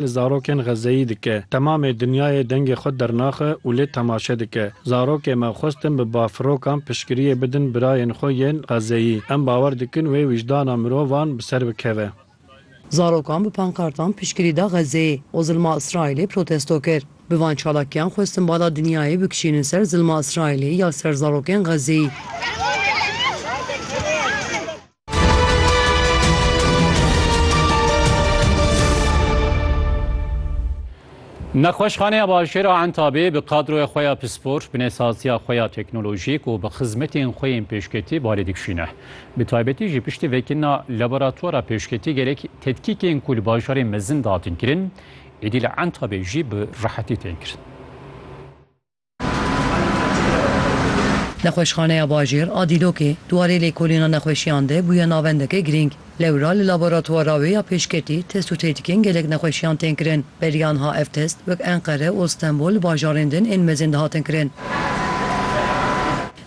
li zarokên Xezeyî dike. Temamê dinyayê dengê xwe dernaxe û lê temaşe dike. Zarokê me xwestin bi bafirokan piştgiriyê bidin birayên xwe yên Xezeyî. Em bawer dikin wê wijdana mirovan bi ser bikeve. Zarokan bi pankartan piştgirî da Xezeyê û zilma Îsraîlê protesto kir. Bi van çalakiyan xwestin bala dinyayê bikişînin ser zilma Îsraîlê ya ser zarokên Xezeyî. Nexweşxaneya Bajêra Entabê bi kadroya xwe ya pispor, binêsaziya xwe ya teknolojîk û bi xizmetên xwe yên pêşketî balê dikişîne. Bi taybetî jî piştî vekirina laboratwara pêşketî gelek tedkîkên ku li bajarê mezin de hatin kirin, êdî li Entabê jî bi rehetî tên kirin. Nexweşxaneya Bajêr a Dîlokê di warê lêkolîna nexweşiyan de bûye navendeke girîng. Lewra li laboratwara wê ya pêşketî test û têdikên gelek nexweşiyan tên kirin. Beriya niha ev test wek Enqere û Stenbol li bajarên din ên mezin dihatin kirin.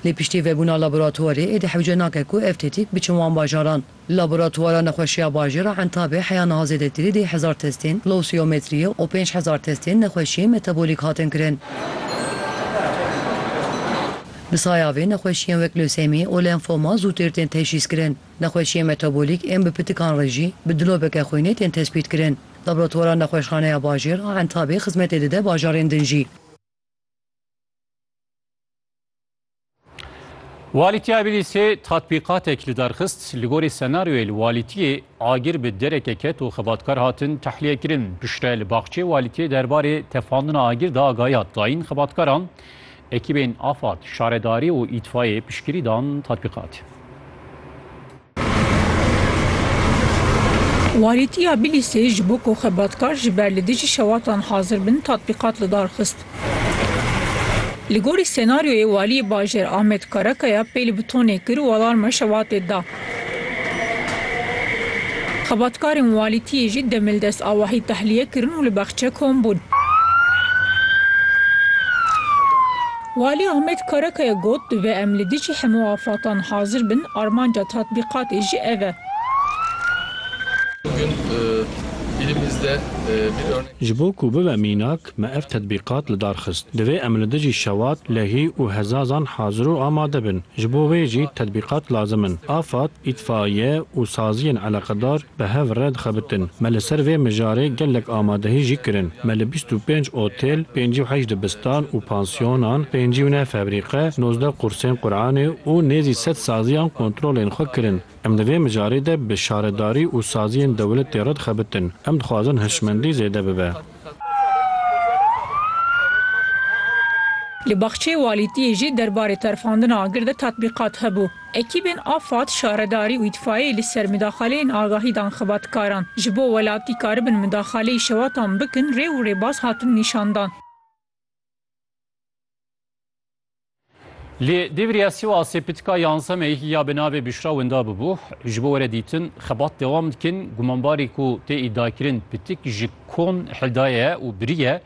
Lê piştî vebûna laboratwarê êdî hewce nake ku ev têdîk biçin wan bajaran. Laboratwara Nexweşiya Bajêr a Entabê heya niha zêdetirî dê hezar testên lowsiyometriyê û pênc hezar testên nexweşiyên metabolîk hatin kirin. Bi saya vê nexweşiyên wek lösemî û lenfoma zûtêr tên teşhîs kirin. Nexweşiyên metabolîk ên bi pitikan re jî bi dilobeke xwînê tên tespît kirin. Laboratwara Nexweşxaneya Bajêr a Entabê xizmetê dide bajarên din jî. Walîtiya Bîlîsê tatbîqatek li dar xist, li gorî senaryoyê li walîtiyê agir bi dereke ket û xebatkar hatin tehlîyekirin. Piştre li baxçeyê walîtiyê derbarê tefandina agir de agahî hat dayîn xebatkaran. Ekîbên afad, şaredarî û îtfayê piştgirî dan tatbîqatê. Walîtî ya Bilîsê ji bo ku xebatkar ji ber li dijî şewatan hazir bin tatbîqat li dar xist. Li gorî senaryoyê Waliyê Bajêr Amed Karakaya pê li butonê kir û alarma şewatê da. Xebatkarên walîtiyê jî demil dest awahî tehliye kirin û li Baxçekom bûn. Walî Ahmet Karakaya got, Divê em li dijî hemû afatan hazir bin, armanca tatbîqatê jî ev e. Ji bo ku bibe mînak, me ev tetbîqat li dar xist. Divê em li dijî şewat, lehî û hezazan hazir û amade bin. Ji bo wê jî tetbîqat lazim in. Afad, îtfaiye û saziyên eleqedar Bi hev re dixebitin. Me li ser vê mijarê gelek amadehî jî kirin. Me li bîst û pênc otêl, pêncî û heşt dibistan û pansyonan, pêncî û neh febrîqe, nozdeh qursên Quranê û nêzî sed saziyan kontrolên xwe kirin. Em di vê mijarê de bi şaredarî û saziyên dewletê re dixebitin. Em dixwazin hişmendî zêde bibe. Li baxçeyê walîtiyê jî derbarê terfandina agir de tatbîqat hebû. Ekîbên afad, şaredarî û îtfaiyeyê li ser midaxaleyên agahî dan xebatkaran. Ji bo welatî karibin midaxaleyî şewatan bikin rê û rêbaz hatin nîşandan. Li Dêvriya Sîwasê pitika yanzemeyî ya bi navê Bişra winda bûbû. Ji bo were dîtin xebat dewam dikin. Gumanbarî ku tê îdiakirin pitik ji kon hildaye û biriye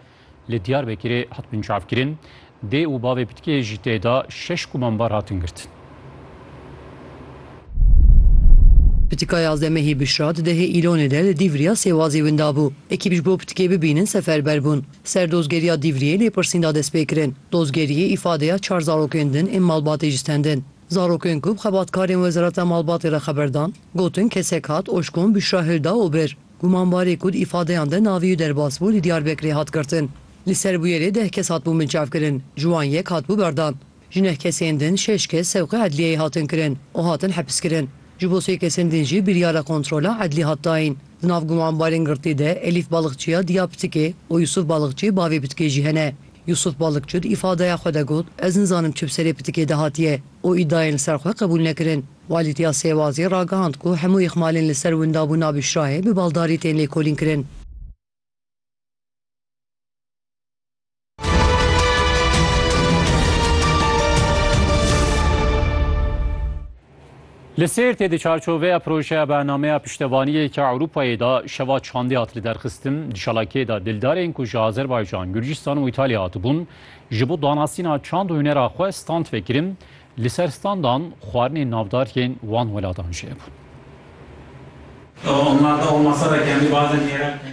li Diyarbekirê hat binçavkirin. Dê û bavê pitikê jî tê de şeş gumanbar hatin girtin. Pitika yazemehî Bişra di dehê Îlonê de li Dîvriya Sêwazê winda bû. Ekîb ji bo pitikê bibînin seferber bûn. Ser dozgeriya Dîvriyê lêpirsîn da destpêkirin. Dozgeriyê îfadeya çar zarokên din ên malbatê jî stendin. Zarokên ku bi xebatkarên Wezareta Malbatê re xeber dan, gotin kesek hat Oşkon Büşra Hilda û bir gumanbarê ku di îfadeyan de navê wî derbas bû li Diyarbekirê hat girtin. Li ser bûyerê deh kes hatibûn binçavkirin, ji wan yek hatibû berdan. Ji neh kesên din şeş kes sewqê edliyeyê hatin kirin û hatin hepiskirin. Ji bo sê kesên din jî biryara kontrola edlî hat dayîn. Di nav gumanbarên girtî de Elîf Balikçiya diya pitikê û Yusuf Balikçi bavê pitikê jî hene. Yusuf Balikçi di îfadeya xwe de got, Ez nizanim çi bi serê pitikê de hatiye û îdayên li ser xwe qebûl nekirin. Walîtiya Sêwazê ragihand ku hemû îxmalên li ser windabûna Bişrayê bi baldarî tên lêkolînkirin. Li Sêrtê di çarçoveya projeya bernameya piştevaniyê ke Ewropayê da şeva çandê hat li derxistin di çalakiyê da dildarên ku ji Azerbaycan, Gurcistan û Îtalya hatibûn ji bo danasîna çand û hunera xwe stand vekirin li ser standan xwarinên navdar yên wan welatan jî hebûn.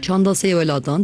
Çanda sê welatan